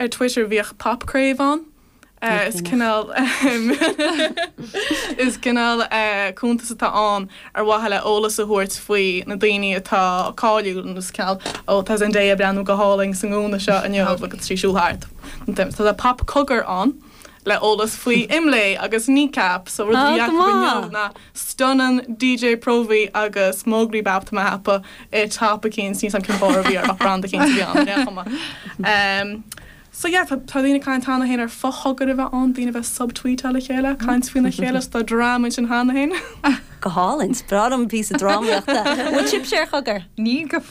ar Twitter bhíodh Pop Crave ann. Is cineál is cineál cuntas atá ann ar mhaithe le eolas a thabhairt faoi na daoine atá cáiliúil nó is cineál ó tá Zendaya ag breathnú go hálainn sa ngúna seo inniu agus í ag siúl thart. Tá Pop Cogar ann. le eolas faoi Imlé agus Kneecap, so rud a bhí acu inniu ná stunann DJ Próvaí agus Móglaí Bap Tá mé a cheapadh i top éicint, níl a fhios agam cén barr a bhí air ach brand éicint a bhí ann, bhí an-chuma. Umm so yeah tá tá daoine ag caint cheana féin ar fo-chogair a bheith ann, daoine bheith ag subtweetáil le chéile, caint faoina chéile so tá drama ansin cheana féin. Go hálainn! Is breá liom píosa drámaíochta. Bhfuil sibhse ar Chogar? Níl go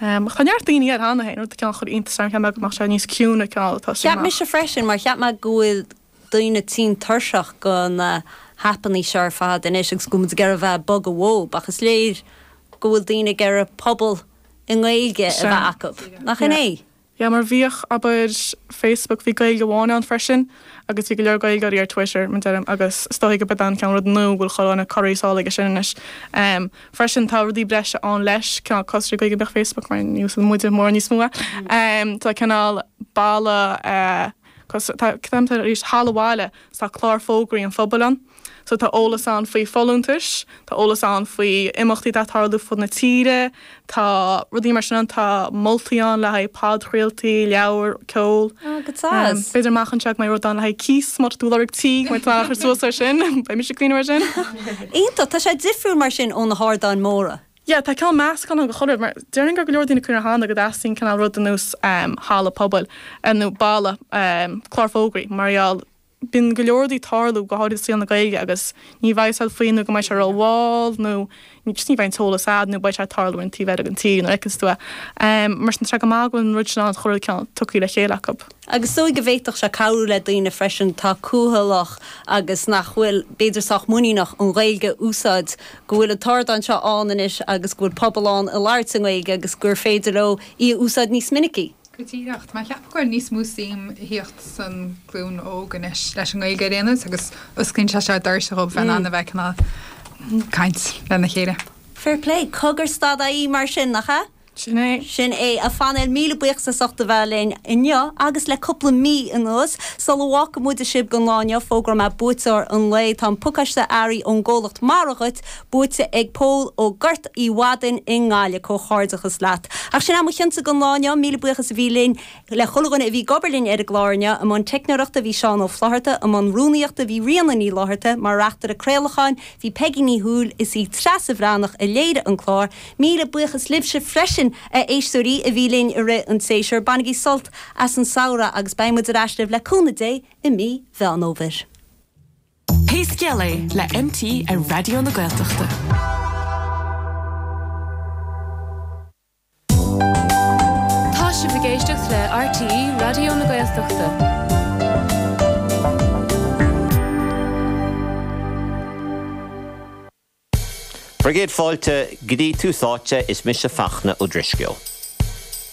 Tá neart daoine air cheana féin, rud a chineál chuir iontas orm, cheap mé go mbeadh sé níos ciúine ag an am a tosaigh amach. Cheap mise freisin, mar cheap mé go bhfuil daoine tinn tuirseach de na haipeanna seo ar fad anois agus go bhfuil muid ag iarraidh a bheith ag bogadh uathu, ach is léir go bhfuil daoine ag iarraidh pobal i nGaeilge a bheith acu, nach in é? Yeah mar bhíodh, abair, Facebook, bhí Gaeilge amháin ann freisin agus bhí go leor Gaeilgeoirí ar Twitter, mar deirim, agus is dóiche gurb é an cineál rud nó go bhfuil chomh an corraí sall aige sin anois. Em, freisin tá rudaí breise ann leis, cineál cosúil Gaeilge beag Facebook mar ní úsáideann muide mórán níos mó é. Em, tá cineál balla eh, cos, tá, cad é an t-ainm, arís, Halla an Bhaile, so tá clár fógraí an phobail ann. So tá eolas ann faoi folúntais, tá eolas ann faoi imeachtaí atá ag tarlú fud na tíre, tá rudaí mar sin ann, tá moltaí ann le haghaidh podchraoltaí, leabhair, ceol. Oh, go deas. B'fhéidir amach anseo go mbeidh rud ann le haghaidh cíos, má tá tú ag lorg tí, go mbeidh tú in ann chur suas air sin, beidh mise ag caoineadh air sin. Iontach, tá sé difriúil mar sin ó na hardáin móra. Yeah, tá cineál meascán ann de chuile rud, mar déarfainn gur go leor daoine cuireann thánda go dteastaíonn cineál rud ar nós, halla pobail, nó balla, clár fógraí mar gheall Bíonn go leor rudaí ag tarlú, go háirid i saol na Gaeilge, agus ní bheidh a fhios agat faoi nó go mbeidh sé rómhall nó just ní bheidh an t-eolas agat nó beidh sé ag tarlú ar an taobh eile den tír nó ní fheiceann tú é. Mar sin tá sé go maith go bhfuil an rud sin ann chuile rud cineál tugthaí le chéile acu. Agus is dóigh go bhféadfadh sé cabhrú le daoine freisin atá cúthalach agus nach bhfuil b'fhéidir sách muiníneach an Ghaeilge a úsáid, go bhfuil an t-ardán seo ann anois agus go bhfuil pobal ann ag labhairt i nGaeilge agus gur féidir leo í a úsáid níos minicí. Go díreach, mar cheapfá go bhfuil níos mó suim a thíocht san glúin óg anois leis an nGaeilge ar aon nós agus osclaíonn sé seo doirse dhóibh bheith in ann a bheith ag caint lena chéile. Fair play. Cogar dot ie mar sin, nach ea? Sin é. Sin é. A Phainéil, míle buíochas as ucht a bheith linn inniu agus le cúpla mí anuas. Sula bhfágfaidh muid sibh don lá inniu, fógróidh mé buaiteoir an lae. Tá an pacáiste earraí ón gcomhlacht Mara dhuit. buaite ag Pól ó Ghort Uí Mhadaín i nGaillimh, comhghairdeachas leat. Ach sin é mo chionta don lá inniu, míle buíochas a bhí linn. Le chuile dhuine a bhí ag obair linn ar an gclár inniu, i mbun teicneoireachta bhí Seán Ó Flaithearta, i mbun rúnaíochta bhí Ríona Ní Fhlaithearta, mar reachtaire craolacháin bhí Peigí Ní Chumhaill, is í Treasa Bhreathnach a léirigh an clár. Míle buíochas libhse freisin, a éisteoirí, a bhí linn i rith an tséasúir. Bainigí sult as an samhradh agus beidh muid ar ais libh le cúnamh Dé i mí Mheán Fhómhair. Pé Scéal É le MT ar Raidió na Gaeltachta. Tá sibh ag éisteacht le RTÉ Raidió na Gaeltachta. Bhur gcéad fáilte go dtí Tús Áite, is mise Fachtna Ó Drisceoil.